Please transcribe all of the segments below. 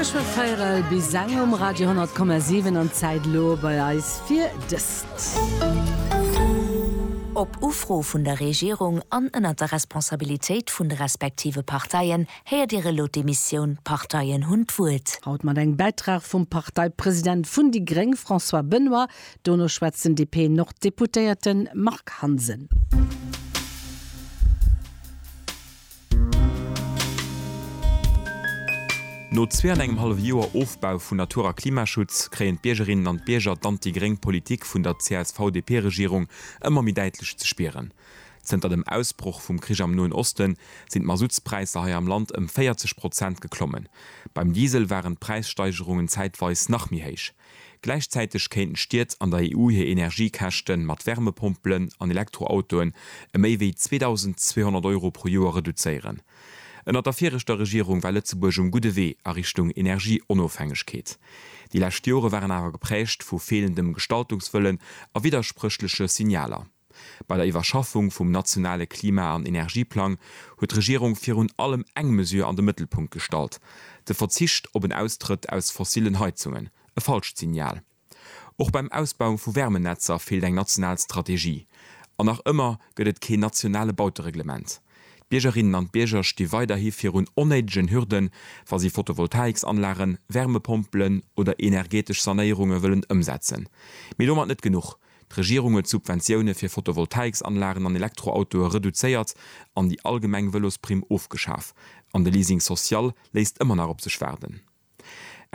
Ech war véierel bis eng um Radio 100,7 an d'Zäit elo bei eis fir dëst. Op Ufro vun der Regierung an ënnert der Responsabilitéit vun de respektive Parteien héiert Dir elo d'Emissioun D'Parteien hunn d'Wuert. Haut mat engem Bäitrag vum Parteipresident vun déi gréng François Benoy, dono schwätzt den DP-Nord-Deputéierte Marc Hansen. No zwee an engem hallef Joer Ofbau vun Natur a Klimaschutz kréien d'Biergerinnen an d'Bierger d'anti-gréng Politik vun der CSV-DP-Regierung ëmmer méi däitlech ze spieren. Zënter dem Ausbroch vum Krich am Noen Osten sinn d'Masuttspräisser hei am Land ëm 40 Prozent geklommen. Beim Diesel waren d'Präissteigerungen zäitweis nach méi héich. Gläichzäiteg kéinten d'Stied an der EU hir Energiekäschte mat Wärmepompelen an Elektroautoen ëm méi wéi 2.200 Euro pro Joer reduzéieren. Ënnert der viregter Regierung war Lëtzebuerg um gudde Wee a Richtung Energieonofhängegkeet. Déi lescht Jore waren awer geprägt vu feelendem Gestaltungswëllen a widderspréchleche Signaler. Bei der Iwwerschaffung vum nationale Klima an Energieplang huet d'Regierung virun allem eng Mesure an de Mëttelpunkt gestallt, de Verzicht op en Austrëtt aus fossillen Heizungen. E falscht Signal. Och beim Ausbau vu Wärmenetzer feelt eng national Strategie. An nach ëmmer gëtt et keen nationale Bautereglement. D'Biergerinnen an d'Bierger sti weiderhi virun onnéidegen Hürden, wa si Photovoltaïksanlagen, Wärmepompelen oder energetesch Sanéierunge wëllen ëmsetzen. Mee domat net genuch, D'Regierung huet d'Subventioune fir Photovoltaïques-Anlagen an Elektroautoe reduzéiert an déi allgemeng Vëlosprimm ofgeschaf. An de Leasing social léisst ëmmer nach op sech waarden.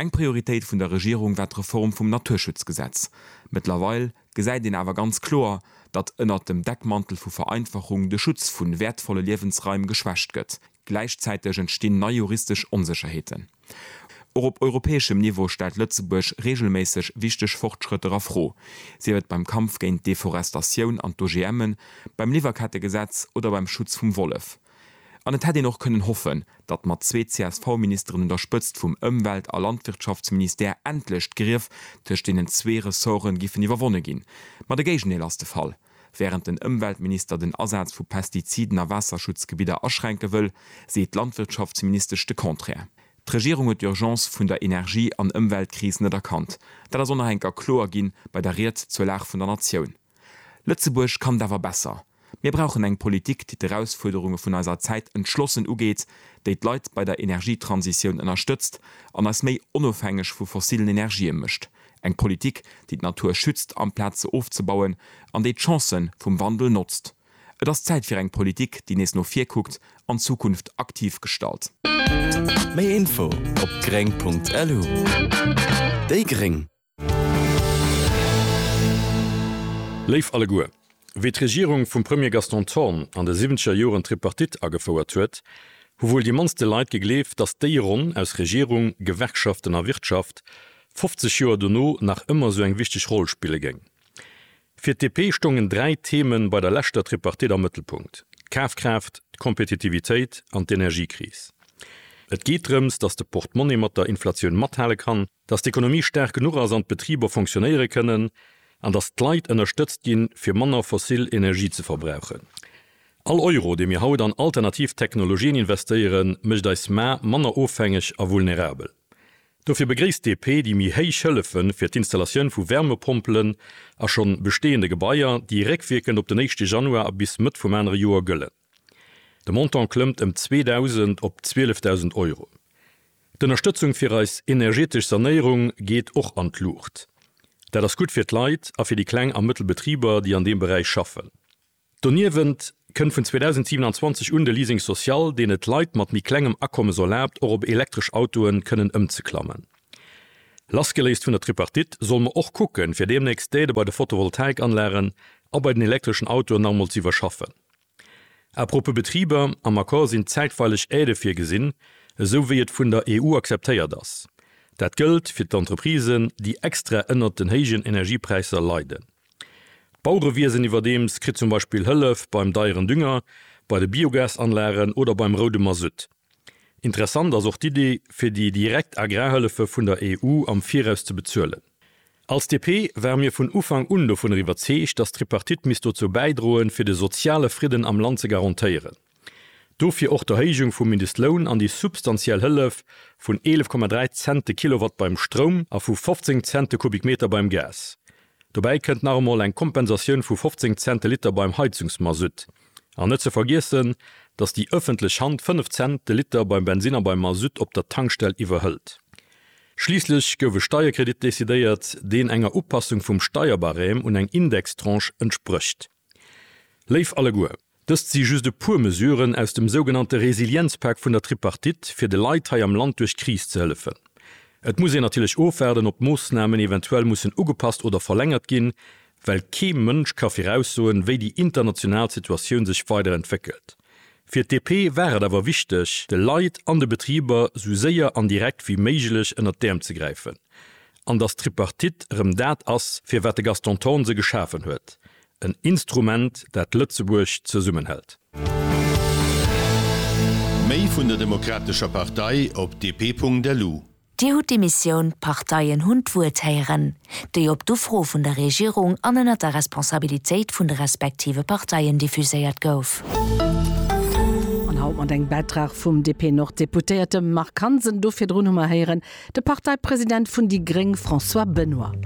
Eng Prioritéit vun der Regierung war d'Reform vum Naturschutzgesetz. Mëttlerweil gesäit een awer ganz kloer, datt ënnert dem Deckmantel vu Vereinfachung de Schutz vu wäertvolle Liewensraim geschwächt gëtt, Gläichzäiteg entstinn nei juristesch Onsécherheeten. Och op europäeschem Niveau stellt Lëtzebuerg reegelméisseg wichteg Fortschrëtter a Fro, sief et beim Kampf géint d'Deforestatioun an d'OGMen, beim Liwwerkettegesetz oder beim Schutz vum Wollef. An et hätt een och kënnen hoffen, datt mat zwee CSV-Ministeren un der Spëtzt vum Ëmwelt a Landwirtschaftsministère endlech d'Grief tëscht deenen zwee Ressorte giffen iwwerwonne ginn. Ma de Géigendeel ass de Fall. Wärend den Ëmweltminister den Asaz vu Pestiziden a Waasserschutzgebidder aschränke wëll, seet d'Landwirtschaftsministesch de Contraire. D'Regierung huet d'Urgence vun der Energie an Ëmweltkris net erkannt. Dat ass onerhängt a kloer ginn bei der Ried zur Lag vun der Natioun. Lëtzebuerg kann et awer besser. Mir brauchen eng Politik, déi d'Erausfuerderunge vun eiser Zäit entschlossen ugeet, déi d'Leit bei der Energietransitioun ënnerstëtzt an eis méi onofhängeg vu fossilen Energië mécht, Eng Politik, déi d'Natur schützt amplaz se ofzebauen, an déi d'Chancen vum Wandel notzt. Et ass Zäit fir eng Politik, déi nees no vir kuckt an d'Zukunft aktiv gestalt. Méi Info op gréng.lu Déi Gréng. Léif alleguer, Wéi d'Regierung vum Premier Gaston Thorn an de siwwenzeger Joren d'Tripartite agefouert huet, hu wuel déi mannste Leit gegleeft, datt déi Ronn aus Regierung, Gewerkschaften a Wirtschaft 50 Joer dono nach ëmmer esou eng wichteg Roll spille géing. Fir d'DP stoungen dräi Theme bei der leschter Tripartite am Mëttelpunkt, d'Kafkraaft, d'Kompetitivitéit an d'Energiekris. Et geet drëms, datt de Portemonnaie mat der Inflatioun mathale kann, datt d'Ekonomie staark genuch ass an d'Betriber fonctionéiere kënnen an datt d'Leit ënnerstëtzt ginn, fir manner fossil Energie ze verbrauchen. All Euro, dee mir haut an alternativ Technologien investéieren, mécht eis Mar manner ofhängeg a vulnerabel. Dofir begréisst d'DP déi méi héich Hëllefe fir d'Installatioun vu Wärmepompelen a schonn bestehende Gebaier, déi réckwierkend op den éischte Januar a bis Mëtt vum anere Joer gëllen. De Montant klëmmt ëm 2.000 op 12.000 Euro. D'Ënnerstëtzung fir eis energetesch Sanéierung geet och an d'Luucht. Dat ass gutt fir d'Leit a fir déi kleng a mëttel Betriber, déi an deem Beräich schaffen. Doniewent kënnt vun 2027 un de Leasing social, deen et Leit mat méi klengem Akommes erlaabt, och op elektresch Autoe kënnen ëmzeklammen. Lassgeléist vun der Tripartite solle mer och kucken, fir deemnächst d'Aide bei de Photovoltaikanlagen a bei den elektreschen Autoen nach emol ze iwwerschaffen. A propos Betriber, am Accord sinn zäitweileg Aidë virgesinn, esou wéi et vun der EU akzeptéiert ass. Dat gëllt fir d'Entreprisen, déi extra ënnert den héijen Energiepräisser leiden. D'Baurewiesen iwwerdeems kritt zum Beispill Hëllef beim deieren Dünger, bei de Biogasanlagen oder beim roude Masutt. Interessant ass och d'Iddi fir déi direkt Agrarhëllefe vun der EU am Viraus ze bezuelen. Als DP ware mir vun Ufank un dovunner iwwerzeegt, datt d'Tripartite misst dozou bäidroen, fir de soziale Fridden am Land ze garantéieren. Dofir och d'Erhéijung vum Mindestloun an déi substantiell Hëllef vun 11,3 Cent de Kilowatt beim Stroum a vu 15 Cent de Kubikmeter beim Gas. Dobäi kënnt nach emol eng Kompensatioun vu 15 Cent de Liter beim Heizungsmasutt. An net ze vergiessen, datt déi ëffentlech Hand 5 Cent de Liter beim Bensin a beim Masutt op der Tankstell iwwerhëlt. Schliisslech gouf e Steierkredit decidéiert, deen enger Upassung vum Steierbarème un eng Indextranche entsprécht. Léif alleguer! Dëst si just e puer Mesuren aus dem sougenannte Resilienzpak vun der Tripartite, fir de Leit hei am Land duerch d'Kris ze hëllefen. Et muss een natierlech ofwaarden, ob d'Moossnamen eventuell mussen ugepasst oder verlängert ginn, well kee Mënsch ka viraussoen, wéi déi international Situatioun sech weider entwéckelt. Fir d'DP war et awer wichteg, de Leit an de Betriber sou séier an direkt wéi méiglech ënnert d'Äerm ze gräifen. An dass d'Tripartite erëm dat ass, fir wat de Gaston Thorn se geschafen huet, En Instrument, dat Lëtzebuerg zesummenhält. Méi vun der Demokratescher Partei op dp.lu. Dir hutt d'Emissioun D'Parteien hunn d'Wuert héieren, déi op d'Ufro vun der Regierung an ënnert der Responsabilitéit vun de respektive Parteien diffuséiert gouf. An haut mat engem Bäitrag vum DP-Nord-Deputéierte Marc Hansen. Do virdrun hu mer héieren de Parteipresident vun déi gréng François Benoy.